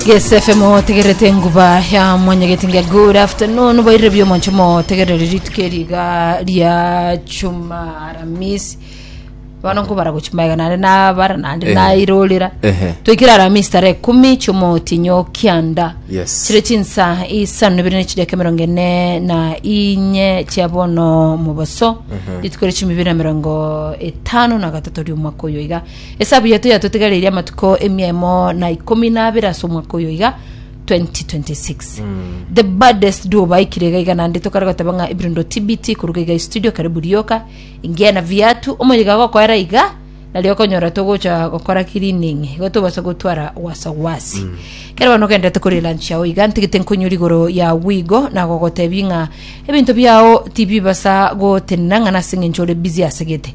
Yes FM otegerete nguba ya mwanyageti nge good afternoon boirire bio moncho motegerere rituko eriga ria chuma aramisi bano nkobara gochimaiga nare nabara nande Ehe. nairorera Ehe. twikire aramisi tarehe kumi chomotinyo kianda Yes. chire chinsa isano ibere ne chideka emerongo ene na inye chia bono moboso rituko ria chumi ibere na emerongo etano na gatato ria omwaka oyo iga Esabu yaito yatotigareirie amatuko emia emo na ikomi na abere ase omwaka oyo iga 2026 the baddest duo baikire iga iga naende tokare goteba ng'a ibirundo tbt koruga iga istudio karibu rioka ingia na viatu omoyega agokoera iga nario okonyora togocha gokora cleaning igo tobasa gotwara wasawasi kero bono ogendete kore lunch yao iga ntigete nkonyori igoro ya wigo nagogotebi ng'a ebinto biao tibibasa gotenena ng'a nase eng'encho ore busy asegete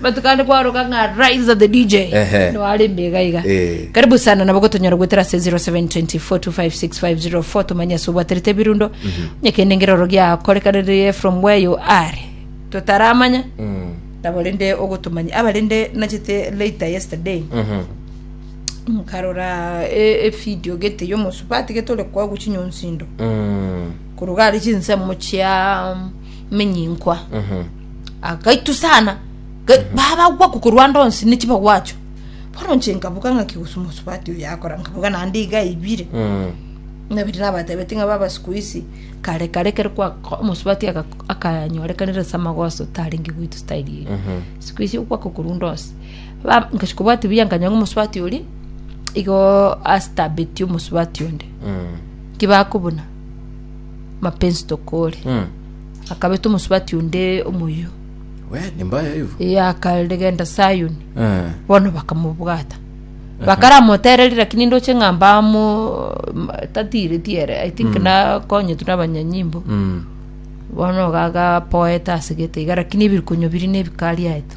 Matuko ande kwaoroka ng'a Raiza the DJ Ehe. no arembe iga iga. Eh. Karibu sana nabo gotonyora gwetera se 0724256504 tumanye ase obwaterete ebirundo. Onye kende ngero oro giakorekanire from where you are. Totaramanya nabo rende ogotomanya abarende nachete later yesterday nkarora e, e video gete yomosubati getore kwa guchinyonsindo koruga ari chinsemo chia menyinkwa agaitu sana Ga- babagwa kokorwanda onsi ne chibagwacho bono nche nkabuga ng'a kigusumosubati oyo yakora nkabuga naende iga aibire Mm. nabiri nabatebeti ng'a baba siku isi kare kare kere kwa omosubati aga- akanyorekanire ase amagoso tarenge goitu style eye Mhm. siku isi okwa kokorunda onsi Ba- nkachi kobwati buya nkanywa ng'a omosubati ori igo astabeti omosubati onde Mm. kibakobuna mapenzi tokore Mm. Akabeta omosubati onde omoyio, We, ni mbaya hivyo. ee, akaregenta Sayoni, Eh. bono bakamobwata. Bakaramotereri, lakini ndoche ng'a mbamo tatiireti ere, I think nakonyetu nabanyanyimbo. Mm. Bono gagapoeta ase gete iga, lakini ebirikonyo biri nebikari aeto.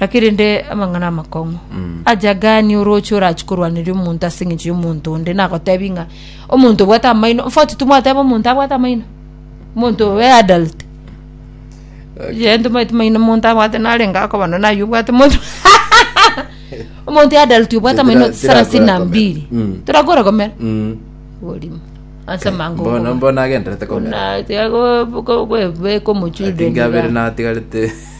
Lakini rende amang'ana amakong'u aja gani oroche orachi korwaneria omonto ase eng'encho y'omonto onde nagotebi ng'a omonto obwate amaino mfoti timwateba omonto abwate amaino omonto obe adult yee tomaeti maino omonto abwate narenge akoba nonye naye obwate omonto omonto adult obwate amaino Tira- sarasini na tirakora mbili komera. Mm. torakora komera Mm. orimo ase amango Mbono okoba. mbono agenderete komera Ona tiago- go- go- beka omochildren Atinga abere iga. natigarete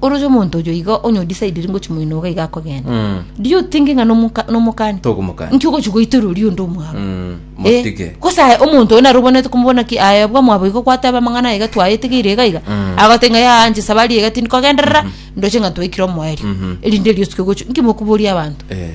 Oroche omonto oyo iga onye odisaidiri ngochi moino iga iga akogenda Mm. do you think ng'a nomoka- nomokani Tokomokani. nki ogochi goitera oria onde omwabo Mm, Eh, motige. gose aye omonto oyo naro obonete komobona ki aye bwa mwabo igo gwateba amang'ana aiga twayetegeire iga iga Mm. agote ng'a yaa nche sabari iga tindi kogenderera ndoche ng'a twaikire omoerio Mhm. erinde riosike gochi nki mokoboria abanto Eh.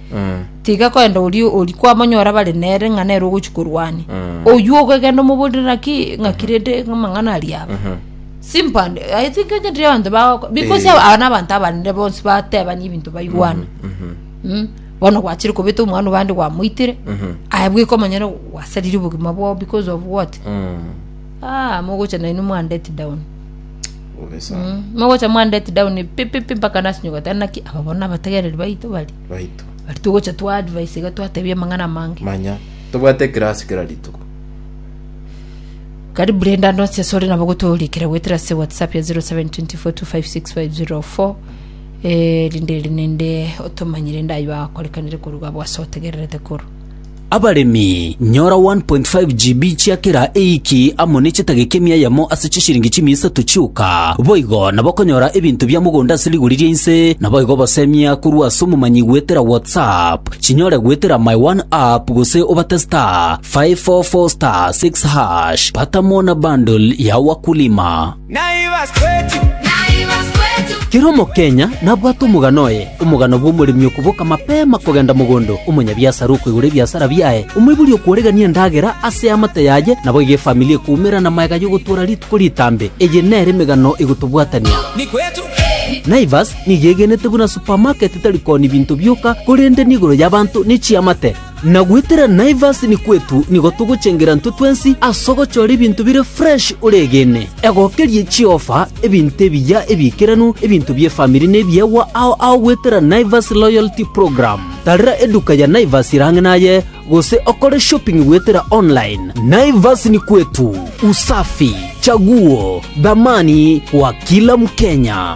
tiga kwenda oria ori kwamonyora bare nere ng'a nere ogochi korwania oywo ogegenda omoborire naki ng'aki rende amang'ana aria aba simple and i think onyentere abanto bago because Eh. aba nabanto abanene bonsi batebania ebinto baigwana Mm. bono gwachire kobeta omwana obande gwamoitire aye bweka omonyene gwasarire obogima bwao because of what Ah, mogocha nainwe mwa let down. Bobe sana. Mm, mogocha mwa let down pi pi pi mpaka nasinyuka tena naki aba bona abategereri baito bari. Baito. Bari togocha twa advice ga twatebia mang'ana mange. Manya. Tobwate class kera rituko. Kari Brenda Ndonse sore nabo gotorikira gwetera se WhatsApp ya 0724256504 eh rinde rinde otomanyire ndayo akorekanire koruga bwa sotegererete koro. Abaremi, nyora 1.5 GB chia kera eiki amo ne chetageka emia yamo ase chisiringi chimia isato chioka. Boigo nabakonyora ebinto bia mogondo ase rigori ria inse, naboigo obasemia korwa ase omomanyi goetera WhatsApp, chinyore goetera My One App gose obate *544*6#, bata mo na bundle ya Wakulima. Naivas Kwetu. Kera Omokenya nabwate omogano oye, omogano bw'omoremi okoboka mapema kogenda mogondo, omonyabiasara okoigora ebiasara biaye, omoibori okworegania endagera ase eamate yaye, naboigo efamili ekoumera namaega y'ogotoora rituko ritambe. Eye nere emegano egotobwatania. Naivas nigo egenete buna supamaketi tari kooni binto bioka, korende nigoro y'abanto ne chiamate. Na goetera Naivas nikwetu nigo togochengera intwe twensi ase ogochora ebinto bire fresh oregene. Egokerie chiofa, ebinto ebiya ebiikeranu, ebinto bi'efamiri na ebiegwa ao ao goetera Naivas Loyalty Program. Tarera eduka ya Naivas ere ang'e naye gose okore shopping goetera online. Naivas ni kwetu, usafi, chaguo, dhamani kwa kila Mkenya.